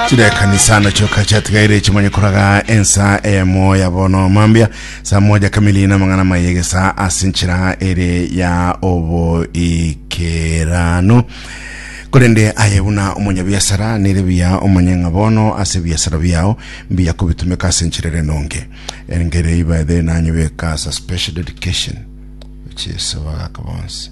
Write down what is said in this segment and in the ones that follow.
Chirekanisa na choka chatigaire echi manye koraga ensa eyemo ya bono mambia saa moja kamili na mang'ana mayegesa ase nchira ere ya oboikeranu korende aye buna omonyabiasara nere buya omanye ng'a bono ase ebiasara biao mbiya kobitumeka ase nchira ere nonge engere ibaethe nanyebeka asa special dedication which is bagaka bonsi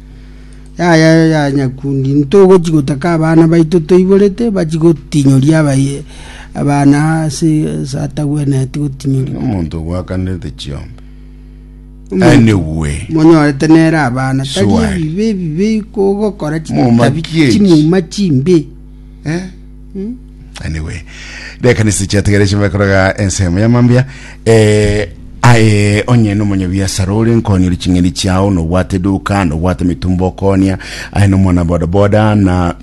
Yaya yo ya nyakundi, ntogochia gotaka abana baito toiborete, bachie gotinyoria abaye- abana ase ase atagwenereti gotinyoria. Omonto ogwakanete chiombe. Omonto- Anyway. monyorete nere abana tari Swali. ebibe ebibe ko ogokora chitabi Momakie ki? chimuma chimbe Eh? anyway reka nisi chiategere chimbe koroga ensemo ya mambia eh, aye onye nomonyabiasara ore nkonyori ching'eni chiao nobwate duka nobwate mitumba okonia aye nomwana bodaboda na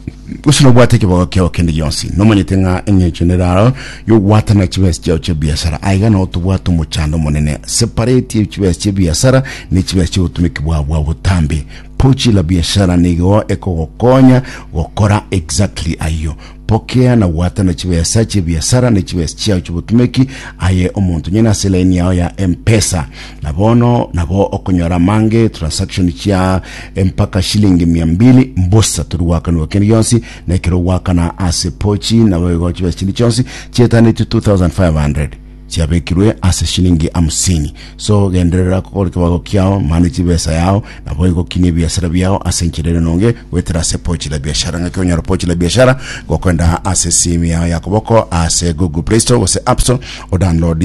gose nobwate ekibogo kiao kende gionsi nomanyete ng'a eng'encho neraro yogwatana chibesi chiao chia biasara aiga nao tobwate omochando omonene separate chibesi chia biasara ne chibesi chia obotumiki bwao bwa botambe Pochi la Biashara nigo ekogokonya gokora exactly ayio. Pokea na gwatana chibesa chi'ebiasara ne chibesa chiao chi'obotumeki aye omonto nyene ase line yao ya M-Pesa. Na bono nabo okonyora amange transaction chia mpaka shilingi mia mbili mbosa tori gwakanigwa kende gionsi na ekero ogwakana ase Pochi nabo igo chibesa chinde chionsi chietanetio 2500. chiabekirwe ase shilingi hamsini. So genderera gokora ekebago kiao, mane chibesa yao, naboigo kinia ebiasara biao ase enchera ere enonge, goetera ase Pochi la Biashara. Ng'aki onyore Pochi la Biashara? Gokoenda ase esimi yao ya koboko ase Google Play Store gose App Store, odownload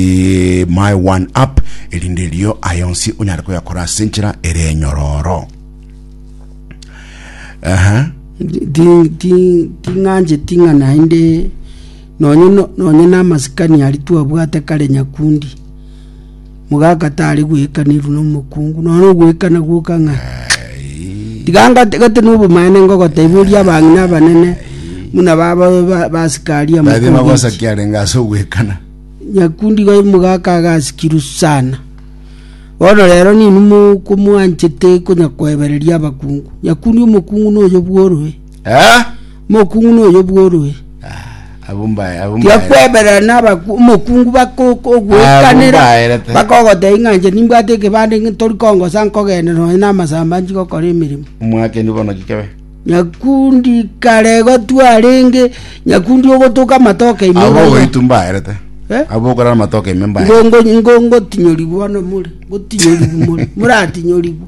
My One App, erinde erio aya onsi onyare koyakora ase enchera ere enyororo. Aha. Ti- ti- ting'ancheti ng'a naende Nonya namasikani aria twabwate kare nyakundi, mogaka tari goekanirwa nomokungu, nonya ogoekana gwoka ng'a tiga ngate gati na obomaene ngogotaiboria abang'ina abanene buna ba- ba- ba- basikari amo Baria magosa ki arenge ase ogoekana? nyakundi iga omogaka agasikirwe sana. Bono rero ninwe mokomwanchete konya koebereria abakungu. Nyakundi omokungu noyo bworwe. Ah, Mokungu noyo bworue. ah, abwo mbae, abwo mbae. Tiakweberera nabaku- omokungu bakokogoekanera Abumbaerete. bakogoteba ng'a inche nimbwate ekebande ng'a tori kongosa nkogenda nonya namasamba nchigokora emeremo Omwakeni bono gikebe. nyakundi kare gotwarenge nyakundi ogotoka amatoke ime Abo goitu mbaerete. Eh? Abo okora amatoke ime mbaerete. ngongotinyorigwa bono more ngotinyorigwa more moratinyorigwa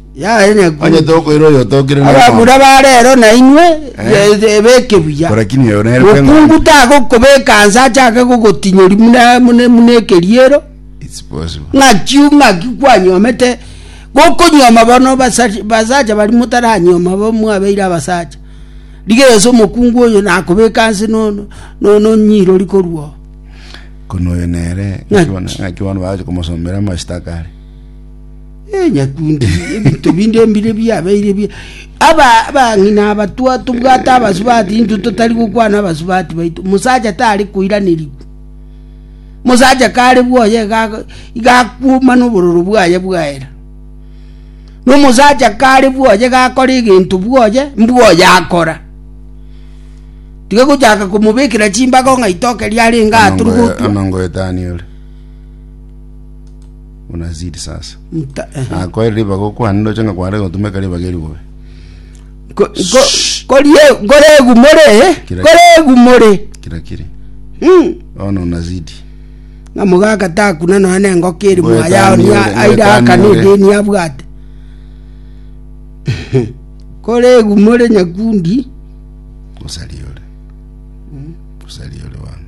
Yaye nyakungu. Onye tokoira oyo otokire na Abamura barero nainwe Eh. eh, ebeke buya. Korakini oyo nere kwe Mokungu ng'ondi. tagokobeka nse achake gogotinyori muna- muna muna ekeriero It's possible. ng'aki ng'aki kwanyomete gokonyoma bono basari- basacha bari motaranyoma bo mwabeire abasacha rigeso omokungu oyo nakobeka nse no- no- no- nonyirori korwa oo. Kono oyo nere Ng'aki. ng'aki bono- ng'aki bono baje komosomera amashitaka are. Eh, nyakunde, ebinto binde mbire biabeire bia aba abang'ina aba twa tobwate abasubati intwe totari gokwana abasubati baito musacha tari koiranirigwa musacha kare bwoye ga- gakuoma nobororo bwaye bwaera nomusacha kare bwoye gakora egento bwoye mbwoye akora tiga gochaka komobekera chimbago ng'a itoke riarenge aha tiri Anango- gotwa anango etani ore buna ziri sasa Nta- ehe. nakoere ribaga okwane ndoche ng'a kware gotumeka ribaga eri bobe Ko- ko- korie- koregumore eh? Kira- koregumore kira kiri Mm. bono nazidi ng'a mogaka takuna nonya nengoka eri Ngoeta moa yao niore, ngoeta airakana niore. edeni abwate koregumore nyakundi gosariore gosariore bono